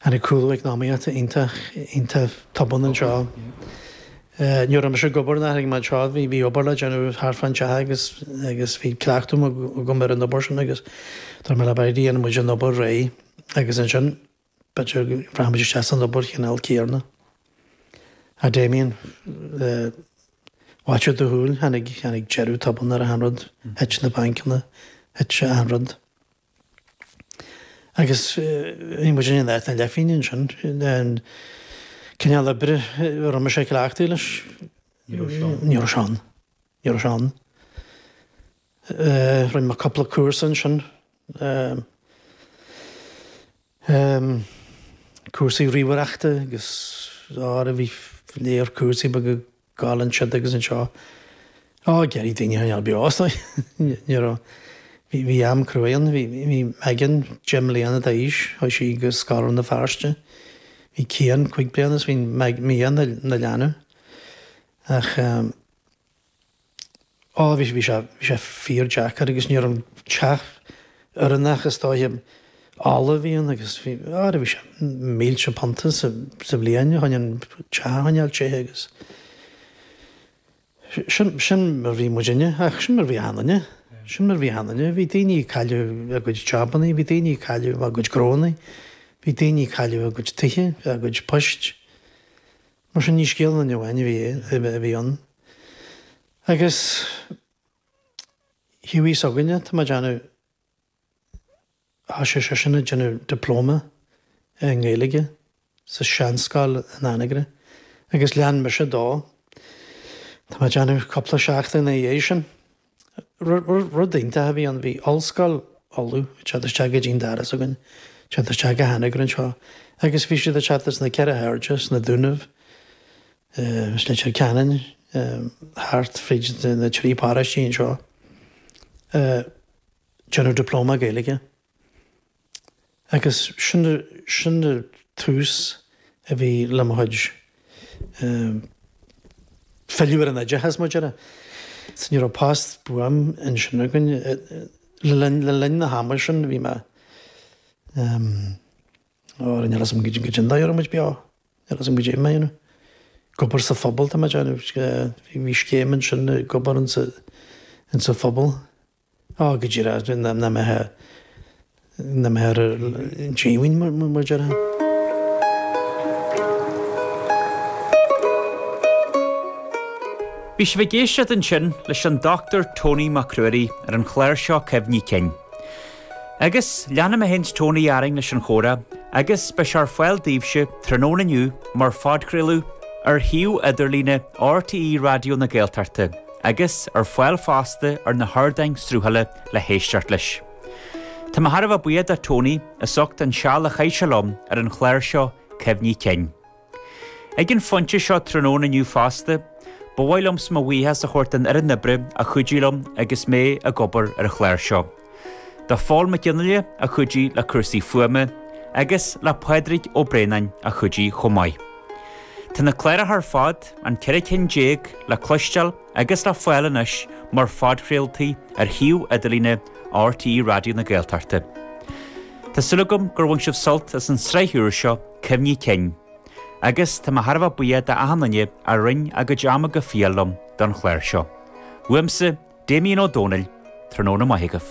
Tháinig cúlú eacnamaíochta iontach, iontach tobann anseo. Ní raibh mise ag obair nuair a tháinig mé anseo, bhí, bhí obair le déanamh thart fán teach agus, agus bhí cleachtadh agam ar an obair sin agus dúirt mé le Bridie, dhéanfaidh muid an obair réidh agus ansin b'fhéidir go rachadh muid isteach san obair chineál céanna. Ach Damien, i bhfaiteadh do shúl, tháinig, tháinig deireadh tobann ar achan rud, thit na bainceanna, thit achan rud. Agus bhí muid in áit na leathphingine ansin, an cineál oibre a raibh mise ag cleachtadh leis, ní raibh sé ann, ní raibh sé ann, ní raibh sé ann. Rinne mé cúpla cúrsa ansin, cúrsaí ríomhaireachta agus, óra, bhí lear cúrsaí beaga gabháil ansiud agus anseo. Ó, déarfaidh daoine, an beo as nó ní raibh. Bhí am cruaidh ann. Bhí Megan deich mbliana d'aois chuaigh sí go scoil Rann na Feirste. Bhí Cian cúig bliana is bhí Mia ina leanbh. Ach. Ó bhí sé, bhí sé, bhí sé fíor-deacair agus ní raibh an teach oiriúnach is dóiche. Ola a bhí ann agus bhí, ara bhí sé, mílte punta sa, sa bhliain chun an teach a choinneáil téite agus sin, sin mar bhí muidinne ach sin mar bhí achan duine, sin mar bhí achan duine. Bhí daoine ag cailleadh a gcuid jabannaí, bhí daoine ag cailleadh a gcuid gnóthaí, bhí daoine ag cailleadh a gcuid tithe, a gcuid poist. Mar sin, ní scéal aon duine amháin a bhí ann. Agus Hughie s'againne, tá mé ag déanamh, thoisigh seisean ag déanamh diploma i nGaeilge sa seanscoil in Anagaire agus lean mise dó. Tá mé ag déanamh cúpla seachtain ina dhiaidh sin. Rud iontach a bhí ann, bhí Ollscoil Uladh ag teacht isteach go dtí'n doras againn, ag teacht isteach go hAnagaire anseo agus bhí siad ag teacht as na ceithre hairde, as na Dúnaibh, as Leitir Ceanainn, thart fríd na trí paróistí anseo, ag déanamh Diploma Gaeilge. Agus sin an tús a bhí le mo chuid filleadh ar an oideachas muid ar ais. Ní raibh post buan ansin againn. Le linn na hama sin bhí mé, ó níl a fhios a'm goidé an dóigh a raibh muid beo, níl a fhios a'm goidé a bhí mé a dhéanamh. Ag obair sa phobal tá mé ag déanamh, bhí scéim ansin ag obair ins an phobal. Ó, go deimhin, agus bíonn na meithe, na meithe ar an díomhaoin, mar a déarfá. Bhí sibh ag éisteacht ansin leis an Dr Tony Mac Ruairí ar an chlár seo Cuimhní Cinn. Agus, leanfaidh mé féin 's Tony orainn leis an chomhrá agus beidh sé ar fáil daoibhse tráthnóna inniu mar phodchraoladh ar shuíomh idirlíne RTÉ Raidió na Gaeltachta. agus ar fáil fosta ar na hardáin sruthála le héisteacht leis. Tá mé thar a bheith buíoch do Tony as ucht an seal a chaith sé liom ar an chlár seo Cuimhní Cinn. Ag an phointe seo tráthnóna inniu fosta, ba mhaith liomsa mo bhuíochas a thabhairt don fhoireann oibre a chuidigh liom agus mé ag obair ar an chlár seo. do Phól Mac Ginnea a chuidigh le cúrsaí fuaime agus le Pádraig Ó Braonáin a chuidigh chomh maith. Tá na cláracha ar fad, an ceithre cinn déag, le cloisteáil agus le fáil anois mar phodchraoltaí ar shuíomh idirlíne RTÉ Raidió na Gaeltachta. Tá súil agam gur bhain sibh sult as an tsraith úr seo, Cuimhní Cinn, agus tá mé thar a bheith buíoch d'achan duine a roinn a gcuid ama go fial liom don chlár seo. Uaimse, Damien Ó Dónaill, tráthnóna maith agaibh.